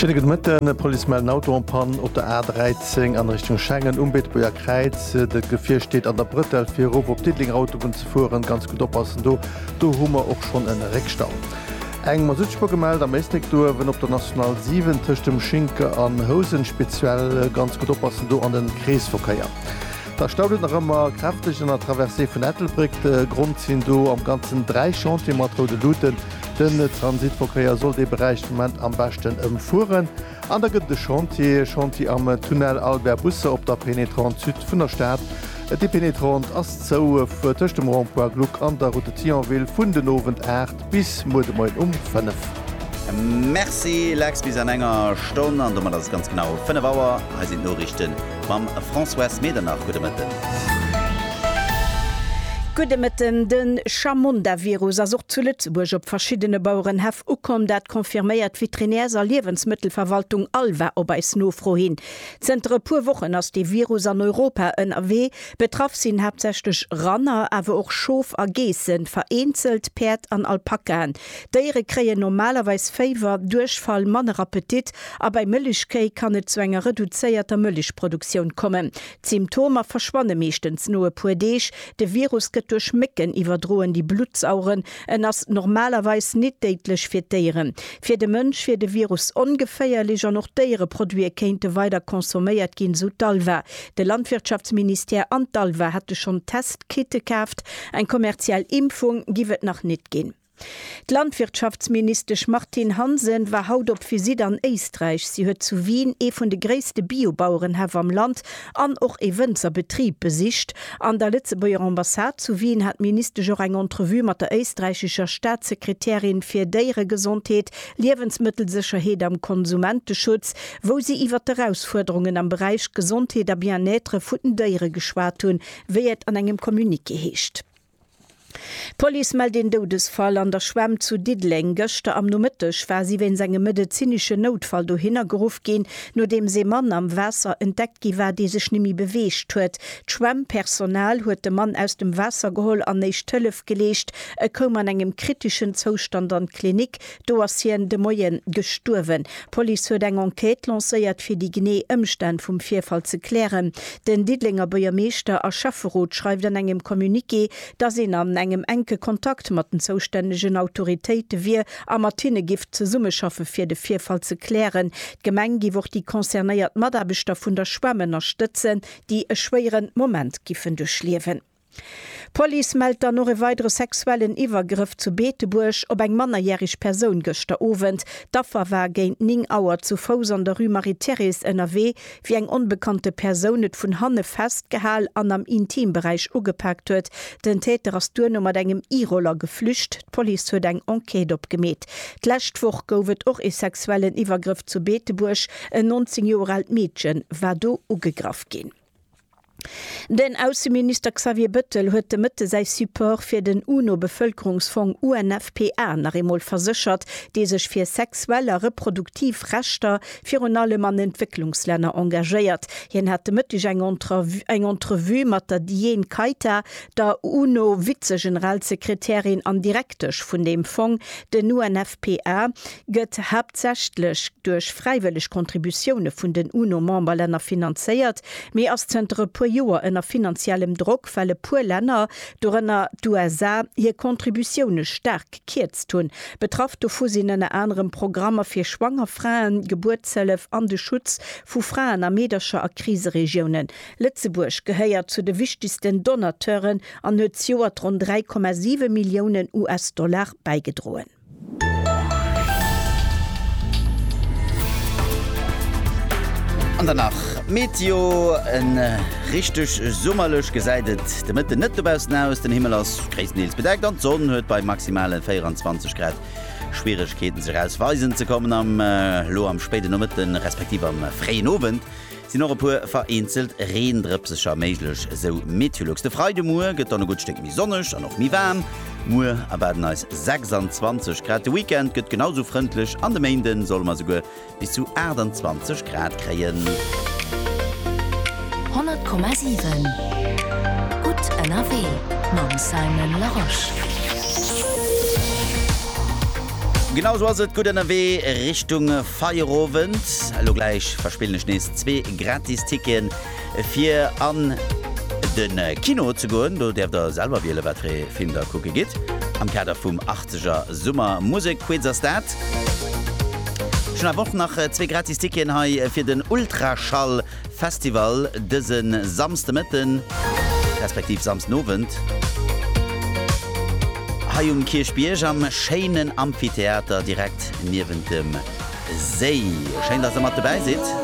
Schéine gudde Mëtten. D'Police mellt en Auto en Panne op der A13 an Richtung Schengen um Beetebuerger Kräiz. Dat Gefier steet an der Brëttel fir erof op d'Diddelenger Autobunn ze fueren. Ganz gutt oppassen do, do hu mer och schonn en Réckstau. Eng Masuttspuer gemellt am Éisléck Duerwen op der National 7 tëscht dem Schinke an Housen speziell. Ganz gutt oppassen do an den Kreesverkéier. Da staut et nach ëmmer kräfteg an der Traversée vun Ettelbréck. De Grond sinn do am Ganzen 3 Chantiere mat roude Luuten. Den Transitverkéier soll dee Beräich de Moment am beschten ëmfueren. An da gëtt et e Chantier, Chantier am Tunnel Albert Busse op der Pénétrante Sud vun der Stad. Déi Pénétrante ass zou tëscht dem Rond-point Gluck an der Route de Thionville vun den Owend 8 bis muer de Moien um 5. Merci Lex, bis an enger Stonn, an domat ass et ganz genau 5 Auer. Hei sinn d'Noriichten. Mam Françoise Medernach, gudde Mëtten. Gudde Mëtten. De Chamonda-Virus ass och zu Lëtzebuerg op verschiddene Bauerenhäff ukomm. Dat confirméiert d'Veterinärs a Liewensmëttelverwaltung Alva op eis Nofro hin. Zënter e puer Wochen ass dee Virus an Europa ënnerwee. Betraff sinn haaptsächlech Ranner, awer och Schof a Geessen, vereenzelt Päerd an Alpakaen. D'Déiere kréien normalerweis Féiwer, Duerchfall, manner Appetit a bei Mëllechkéi kann et zu enger reduzéierter Mëllechproduktioun kommen. D'Symptomer verschwanne meeschtens no e puer Deeg. De Virus gëtt duerch Mécken iwwerdroen, déi Blutt saugen. En ass normalerweis nit déidlech fir d'Déieren. Fir de Mënsch wier de Virus ongeféierlech an och Déiereproduite kéinte weider consomméiert ginn, sou d'Alva. De Landwirtschaftsministère an d'ALVA hätte schonn Testkitte kaaft, eng kommerziell Impfung giff et nach net ginn. D'Landwirtschaftsministesch Martine Hansen war haut op Visitt an Éisträich. Si huet zu Wien ee vun de gréisste Bio-Bauerenhäff am Land an och ee Wënzerbetrib besicht. An der Lëtzebuerger Ambassade zu Wien hat d'Ministesch och eng Entrevue mat der éisträichescher Staatssekretärin fir Déieregesondheet, Liewensmëttelsécherheet am Konsumenteschutz, wou si iwwer d'Erausfuerderungen am Beräich Gesondheet a Bien-être vun den Déiere geschwat hunn, wéi et an engem Communiqué heescht. D'Police mellt een Doudesfall an der Schwämm zu Diddeleng. Gëschter am Nomëtteg war si wéinst engem medezineschen Noutfall dohinner geruff ginn, nodeems ee Mann am Waasser entdeckt gi war, dee sech nemme beweegt huet. D'Schwämm-Personal huet de Mann aus dem Waasser geholl an éischt Hëllef geleescht. E koum an engem kriteschen Zoustand an d'Klinik. Do ass hien de Moie gestuerwen. D'Police huet eng Enquête lancéiert, fir déi genee Ëmstänn vum Virfall ze klären. Den Diddelenger Buergermeeschter a Schäfferot schreift an engem Communiqué, dass een an engem enke Kontakt mat den zoustännegen Autoritéite wier a mat hinne giff zesummeschaffe fir de Virfall ze klären. D'Gemeng giff och déi concernéiert Mataarbechter vun der Schwämm ënnerstëtzen, déi e schwéiere Moment giffen duerchliewen. D'Police mellt dann och e weidere sexuellen Iwwergrëff zu Beetebuerg op eng mannerjähreg Persoun gëschter Owend. D'Affer war géint 9 Auer zu Fouss an der Rue Marie-Thérèse ënnerwee, wéi eng onbekannte Persoun et vun hanne festgehal an am Intimberäich ugepaakt huet. Den Täter ass duerno mat engem E-Roller geflücht. D'Police huet eng Enquête opgemeet. D'lescht Woch gouf et och e sexuellen Iwwergrëff zu Beetebuerg. En 19 Joer aalt Meedche war do ugegraff ginn. Den Ausseminister Xavier Bëttel huet de Mëtte säi Support fir den UNO-Bevëlkerungsfong UNFPA nach eemol verséchert, dee sech fir sexuell a reproduktiv Rechter virun allem an Entwécklungslänner engagéiert. Hien hat de Mëtteg eng eng Entrevue mat der Diane Keita, der UNO-Vizegeneralsekretärin an Direktesch vun deem Fong, den UNFPA. gëtt haaptsächlech duerch fräiwëlleg Kontributioune vun den UNO-Memberlänner finanzéiert, mee ass zënter e puer Joer ënner finanziellem Drock, well e puer Länner, dorënner d'USA, hir Kontributioune staark gekierzt hunn. Betraff dovu sinn ënner anerem Programmer fir schwanger Fraen, d'Gebuertshëllef an de Schutz vu Fraen a Meedercher a Kriseregiounen. Lëtzebuerg gehéiert zu de wichtegsten Donateuren an huet zejoert ronn 3,7 Milliounen US-Dollar bäigedroen. An dann nach Meteo, en richteg summerlech gesäit et de Mëtten net dobaussen aus. Den Himmel ass gréisstendeels bedeckt an d'Sonn huet bei maximale 24 Grad Schwieregkeeten sech aus Weisen ze kommen. Am elo am spéiden Nomëtten respektiv am fréien Owend Sinn och e puer vereenzelt Reendrëpsecher méiglech, sou Meteolux. De Freide Muer gëtt dann e gutt Stéck méi sonneg an och méi waarm. Muer erwaarden eis 26 Grad. De Weekend gëtt genau sou frëndlech an de Méinde solle mer esouguer bis zu 28 Grad kréien. 100,7 Gutt ënnerwee mam Simon Larosche. Genau sou ass et, gutt ënnerwee Richtung. Feierowend. Elo gläich verspillen ech nees zwee gratis Ticketen fir an den Kino ze goen. Do däerft der selwer wielen wat fir ee Film der kucke gitt am Kader vum 80er Summer Musek Quiz. Ass dat? Ech hunn awer och nach zwee gratis Ticketen hei fir den Ultraschall. Festival dëse Samsdemëtten, respektiv Samsdenowend, hei um Kierchbierg am schéinen Amphitheater direkt niewent dem Séi. Schéin, dass der mat dobäi sidd!